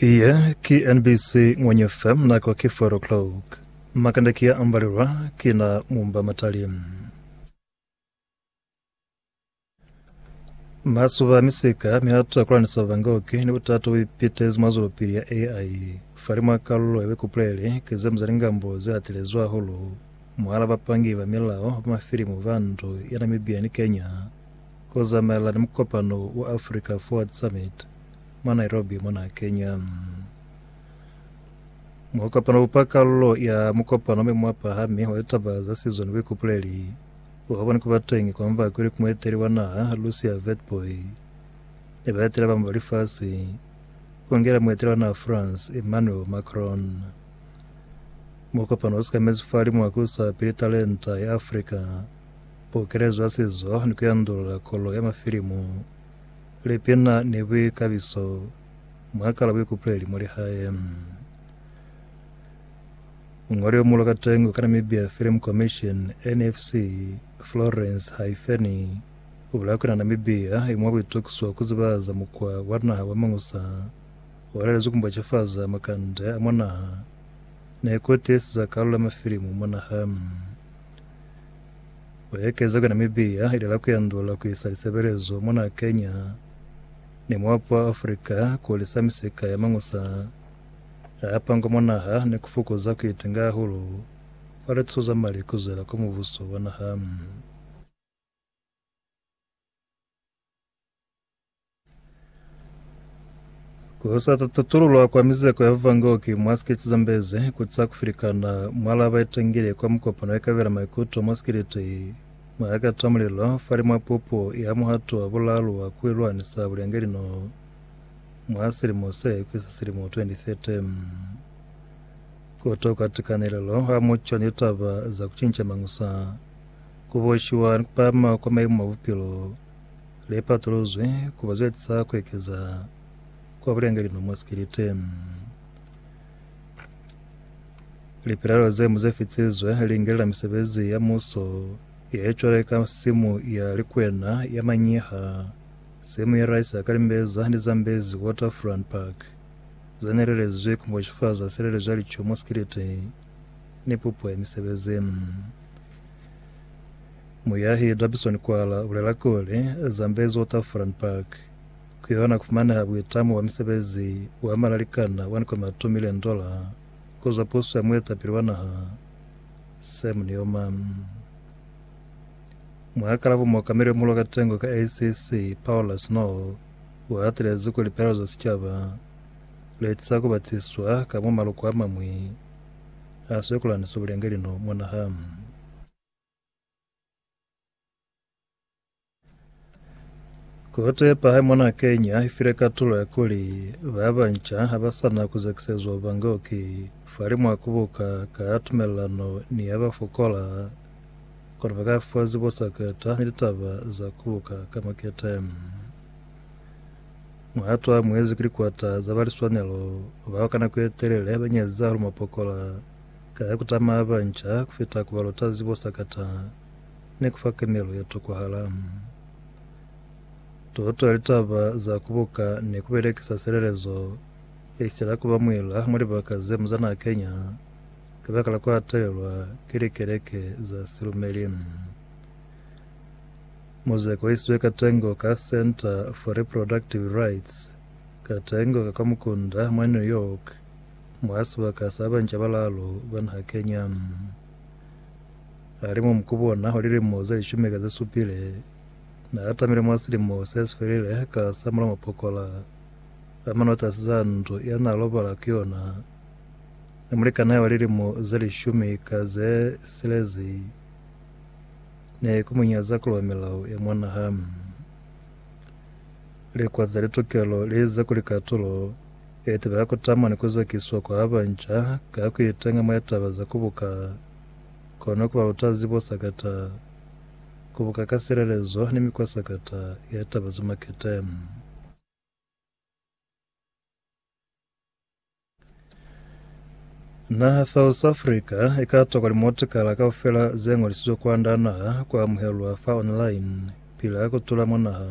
Iye ki NBC Ngwenye FM nako ki 4 o'clock. Makanda ki ya ambalelwa ki na mumba matali. Masuba misika miatu akulanisa vangoki ni butatu bipitezi mwa zwelopili ya AI. Fali mwa kalulo ya bikupulele ki ze mzali ngambo ze atilezwi hahulu mwala bapangi ba milao ba mafilimu ba ndu ya Namibia ni Kenya. Ku zamaela ni mukopano wa Africa Forward Summit mwa Nairobi mona Kenya. Muhokopano upa kalulo ya mukopano me mwapahami wa litaba za sizo ni buikupuleli uhaboni kuba teñi kwa mvako ili ku mueteli wa naha Lucia Vetboy ni baetela bamwi ba lifasi ku ngela mueteli wa naha France Emmanuel Macron. Mukopano usikamezi fali mwa kusa pili talenta ya Africa Pukelezo ya sizo ni kuyandulula kolo ya mafilimu, lipina ni buikabiso mwakala buikupuleli mwa lihae. Muñoli yo mulo kateñi wa Namibia Film Commission, NFC, Florence Haifeni, ubulaya kuli na Namibia i mwa buitukiso kuzibahaza mukwa wa naha wa Mangusa, walelezi kumbocefaza makande a mwa naha, ni kutihisiza kalulo ya mafilimu mwa naha. Ku ekeza kona Namibia ili la kuyandula ku isa lisebelezo mwa naha Kenya ni muapo wa Africa ku lisa misika ya mañusa a a pangwa mwa naha ni ku fukuza ku itenga hahulu fa lituso za mali ku zwela kwa mubuso wa naha. Ku sa tatululwa kwa mizeko ya Vangoki mwa skiti zambezi ku sa kufilikana mwala ba itangile kwa mukopano ya kabela maikuto mwa skiliti mwa ya kata mulilo fali mwa pupo ya muhato wa bulalu wa ku ilwanisa bulenge lino mwa silimo se kwisa silimo 2030 kutoka tikanelelo ha mucho ni taba za kucinca mangusa Ku boshiwa ni ku pahama kwa maimo a bupilo le patuluzwi ku ba ze tisa ku ekeza kwa bulengelima mwa sikilite. Lipelaelo ze mu ze fitisizwe li ngelela misebezi ya muso ye cwale ka simu ya likwena ya manyiha, simu ya rice ya kalimbeza ni zambezi waterfront park, ze nelelezwi ku moshifaza silelezo ya lico mwa sikilite. ni pupo ya misebezi. Muyahi Darbison Kwala u bulela kuli, Zambezi Waterfront Park ku yona ku fumaneha buitamo bwa misebezi wa malalikana wa 1.2 milioni dola ku zwa puso ya muetapili wa naha Sam Nujoma. Mwa kalabo muokameli muhulu wa katengo ka ACC Paula Snow u hatelezi kuli pelaelo za sicaba Leti sa ku batisiswa ka mwa maloko a mañwi a Swikolani si bulenge lino mwa naha. Ku tepa hae mona Kenya i file katulo ya kuli ba banca ha ba sa na ku zekisezwa ubangoki falimwa ha ku buka ka tumelelano ni ya ba fokola, kono ba ka fa zibo sa ku eta ni litaba za ku buka ka makete. Muhato wa muezi ki likwata za ba liswanelo bao ka nako ye telele ba nyeza hahulu mapokola ka ya ku tamaa banca ku fita ku ba luta zibo sakata ni ku fa kenelo ye tokwahala. Toto ya litaba za ku buka ni ku belekisa silelezo i sitela ku ba muila mwa libaka ze mu za na kenya kabakala ku atelelwa ki likeleke za silumeli. Mo ze kohisizwe katengo ka Center for Reproductive Rights, katengo ka kwa mukunda mwa New York, mwa sibaka sa banca balalu ba naha Kenya. Ali mo mukubu ona wa lilimo ze lishumi ka ze supile, na atamile mwa silimo se si felile ka sa mula mapokola a manotasi za ndu ya na lobala ku yona ni mulikani hae wa lilimo ze lishumi ka ze silezi. Ne ku munyaza ku lwa milao ya mwa naha. Likwa za litokelo li ize kuli katulo ye tebe ya ku tama ni ku zwakiswa kwa ba nca ka ku iteña mwa taba za ku buka kono ku ba lutazi bo sakata ku buka ka silelezo ni mikwa sakata ya taba za makete. Naha South Africa e ka tokwa limotikala kaufela ze ngolisizwe kwanda naha ku amuhelwa fa online pili ha kutula mwa naha.